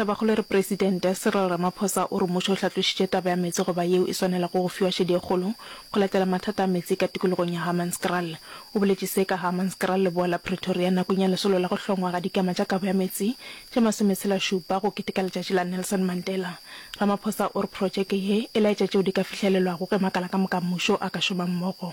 Tabakgolo e re Presidente Cyril Ramaphosa o re mmušo o hlatlošitše taba ya meetse go ba yeo e swanelago go fiwa šedi e kgolo go latela mathata a meetse ka tikologong ya Hammanskraal. O boletše se ka Hammanskraal leboa la Pretoria nakong ya lesolo la go hlongwa ga dikema tša kabo ya meetse tše masometshela-šupa go keteka letšatši la Nelson Mandela. Ramaphosa o re protšeke ye e laetša tšeo di ka fihlelelwago ge makala ka moka a mmušo a ka šoma mmogo.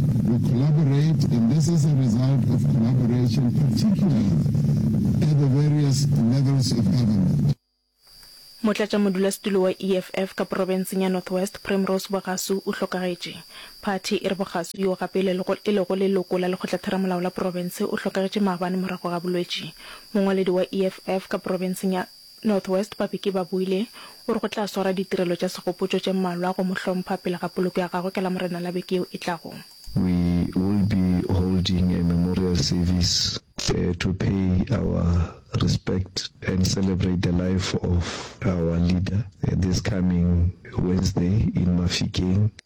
We collaborate and this is a result of collaboration particularly at the various levels of government. Motlatšamodulasetulo wa EFF ka porofenseng ya North West, Primrose Bogasu o hlokagetše. Phathi e re Bogasu, yoo gape e lego leloko la lekgotlatheramolao la porofense, o hlokagetše maabane morago ga bolwetši. Mongwaledi wa EFF ka porofenseng ya. North West Babeke Babuile o re go tla swara ditirelo tša segopotšo tše mmalwa go mo hlompha pele ga poloko ya gagwe ka Lamorena la beke yeo e tlago. We will be holding a memorial service to pay our respect and celebrate the life of our leader this coming Wednesday in Mafikeng.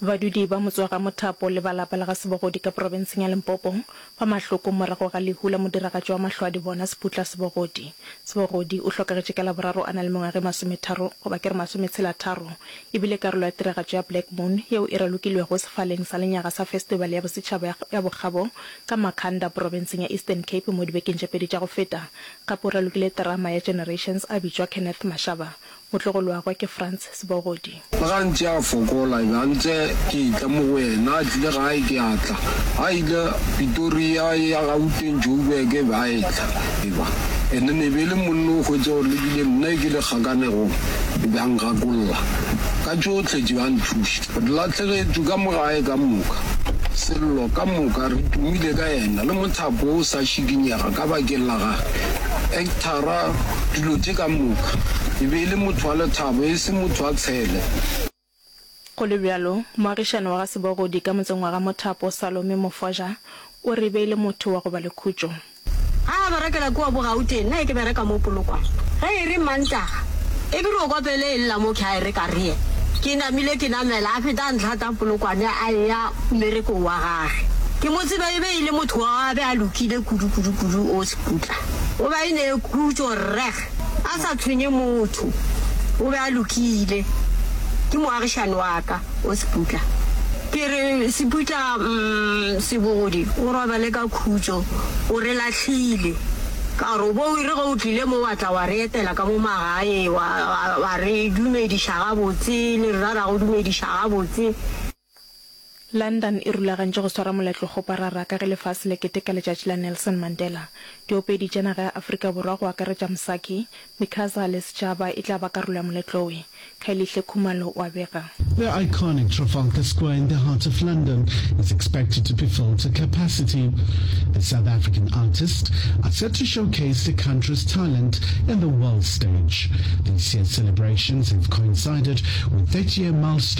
Badudi ba Motswagamothapo le ba lapa la ga Sebogodi ka porofenseng ya Limpopo ba mahloko morago ga lehu la modiragatši wa Mahlwaadibona Seputla Sebogodi. Sebogodi o hlokagetše ka Laboraro a na le mengwaga e masometharo goba ke re masometshelatharo e bile karolo ya tiragatšo ya Black Moon yeo e ralokilwego sefaleng sa lenyaga sa Festibale ya Bosetšhaba ya Bokgabo ka Makhanda porofenseng ya Eastern Cape mo dibekeng tše pedi tša go feta. Gape o ralokile terama ya Generations a bitšwa Kenneth Mashaba O tlo go lwagwa ke Frans Sebogodi. Le ge a ntše a fokola, e be a ntse ke e-tla mo go yena. A tlile gae, ke a tla. Ga a ile Pitoria e ya Gauteng, Joburg, e be a e-tla. Eba ene ne be e le monna o hwetše gore le bile nna e ke le kgakanegong, e be a ngakolla ka tšohle tše, a nthuša. Re lahlegetšwe ka mo gae ka moka. Sello ka moka re tumile ka yena, le mothapo o sa šikinyega ka bakeng la gagwe. Thara dilo tše ka moka. E be e le motho wa lethabo, e se motho wa tshele. Go le bjalo, moagišani wa ga Sebogodi ka motseng wa ga Mothapo, Salome Mofoja, o re e be e le motho wa go ba le khutšo. Ga a berekela kua Bogauteng, nna e ke bereka mo Polokwane. Ge e re Mantaga, e ke re o kopele e lla mo ke a e reka rye. Ke namile ke namela, a feta a ntlhata Polokwane a eya mmerekong wa gage. Ke mo tseba e be e le motho wa a be a lokile kudu-kudu-kudu. O. Putla. Go be e ne e khutšo rreg a sa tshwenye motho. O be a lokile. Ke moagišani wa ka o Seputla. Ke re, Seputla, mm, Sebogodi o robale ka khutšo. O re lahlile. Ka gore o bo o re ge o tlile mo wa tla wa re etela ka mo magae, wa, wa, wa re dumediša gabotse, le rra ra go dumediša gabotse. London e rulagantše go swara moletlo goparara ka ge lefase le keteka letšatši la Nelson Mandela. Diopedi tša naga ya Afrika Borwa go akaretša Msaki, Mikaza le Sechaba e tla ba karolo ya moletlowe, Kgaelihle Khumalo wa bega. The iconic Trafalgar Square in the heart of London is expected to be filled to capacity. The South African artist are set to showcase the country's talent in the world stage. This year's celebrations have coincided with 30 year milestone.